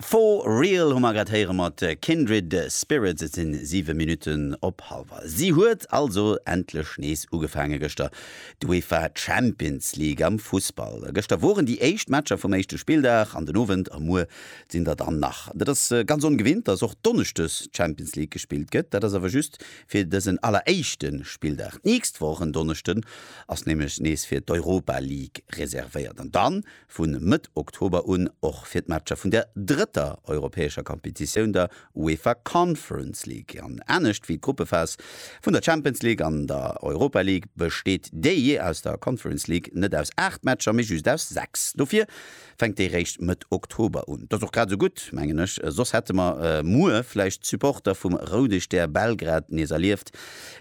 For Real hu mer grad héiere mat Kindred Spirits. Et sinn 7 Minutten op halwer. Si huet also endlech nees ugefaange gëschter, d'UEFA Champions League am Fussball. Gëschter woren déi éischt Matcher vum éischte Spilldag an den Owend a muer sinn der dann nach. Dat ass ganz ongewinnt, dass och Donneschdes Champions League gespillt gëtt. Dat ass awer just fir dësen alleréischte Spilldag. D'nächst Woch en Donneschden ass nämlech nees fir d'Europa League reservéiert. An dann vu Mëtt Oktober un och fir d'Matcher vun der drëtter europäescher Kompetitioun, der UEFA Conference League. An anescht wéi d'Gruppephas vun der Champions League an der Europa League besteet déi aus der Conference League net aus 8 Matcher, mee just aus 6. Dofir fänkt déi réischt Mëtt Oktober un. Dat ass och grad esou gutt, mengen ech, soss hätte mer muer vläicht d'Supporter vum Roude Stär Belgrad nees erlieft,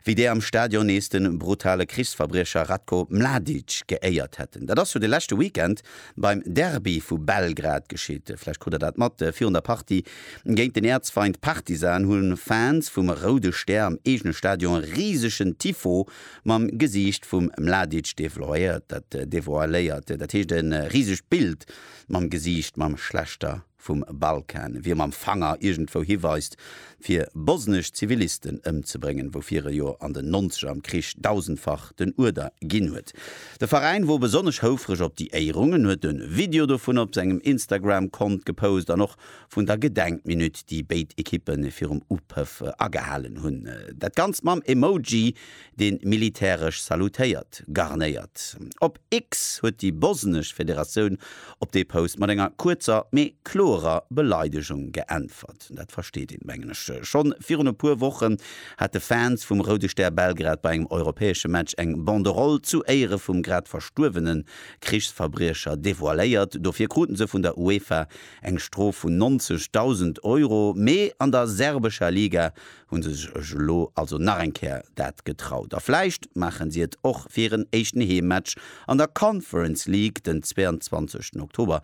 wéi déi am Stadion nees de brutale Krichsverbriecher Ratko Mladic geéiert hätten. Dat ass jo de leschte Weekend beim Derby vu Belgrad geschitt. Vläicht krut der dat mat, Virun der Partie géint den Äerzfeind Partizan hu Fans vum Roude Stär am eegene Stadion e risegen Tifo mam Gesiicht vum Mladic devoiléiert. Dat heescht e risegt Bild mam Gesiicht mam schlechter vum Balkan, wéi e mam Fanger iergendwou hiweist, fir bosnesch Zivilisten ëmzebréngen, woufir e jo an den Nonzeger am Krich dausendfach den Uerder ginn huet. De Veräin wor besonnesch houfreg op déi Éierung, en huet e Video dovun op sengem Instagram-Kont gepost an och vun der Gedenkminutt, déi béid Ekippe virum Upëff agehalen hunn. Dat Ganzt mam Emoji dee militäresch salutéiert, garnéiert. Op X huet déi bosnesch Federatioun op dee Post mat enger kuerzer, mee kloerer Beleidegung geäntwert. Dat versteet een, mengen ech. Schonn virun e puer Wochen hate Fans vum Roude Stär Belgrad bei engem europäesche Match eng Banderole zu Éiere vum grad verstuerwene Krichsverbriecher devoiléiert. Dofir krute se vun der UEFA eng Strof vun 90.000 Euro. Mee an der serbescher Liga Hunn se sech elo also nach eng Kéier dat getraut a vläicht maachen si et och fir hiren éischten Heemmatch an der Conference League den 22 Oktober.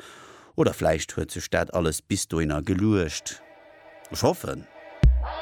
Oder vläicht huet sech dat alles bis dohinner geluecht. Ech hoffen.